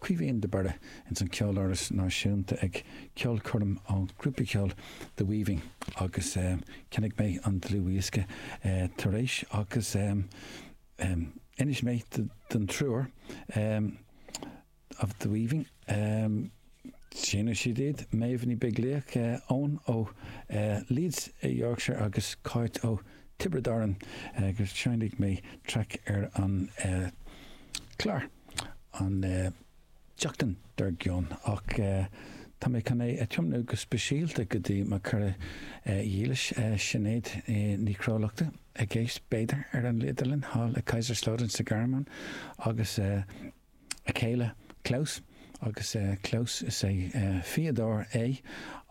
Caoimhín de Barra ins an Ceoláras Náisiúnta ag ceolchoirm ón ghrúpa ceoil The Weaving agus cheannaigh mé an dlúthdhiosca tar éis agus d'inis mé don triúr of The Weaving, sheinneadh siad iad, Méabh Ní Bheaglaoich, Owen ó Leeds i Yorkshire agus Cáit ó Tiobraid Árann, go seinnfeadh mé traic ar an gclár. an tseachtain dar gcionn, ach tá mé chun é a thiomnú go speisialta go dtí mo chara dhílis, Sinéad Nic Riallachta, ag éisteacht, b'fhéidir, ar an idirlíon thall i Kaiserslautern sa Ghearmáin, agus a céile Klaus, agus Klaus, is é fíodóir é,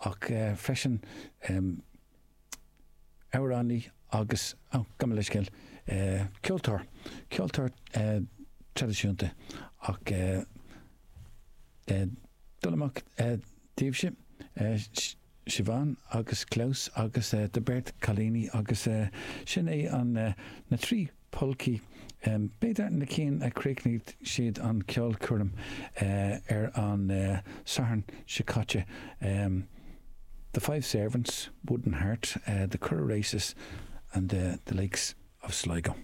ach freisin. amhránaí agus, gabh mo leithscéal, ceoltóir, ceoltóir traidisiúnta ach dul amach daoibhse, Siobhán agus Klaus agus do bheirt cailíní agus sin é an, na trí polcaí. B'fhéidir na cinn a chríochnaigh siad an ceolchoirm ar an Satharn seo caite, The Five Servants, Wooden Heart, The Curragh Races and The Lakes of Sligo.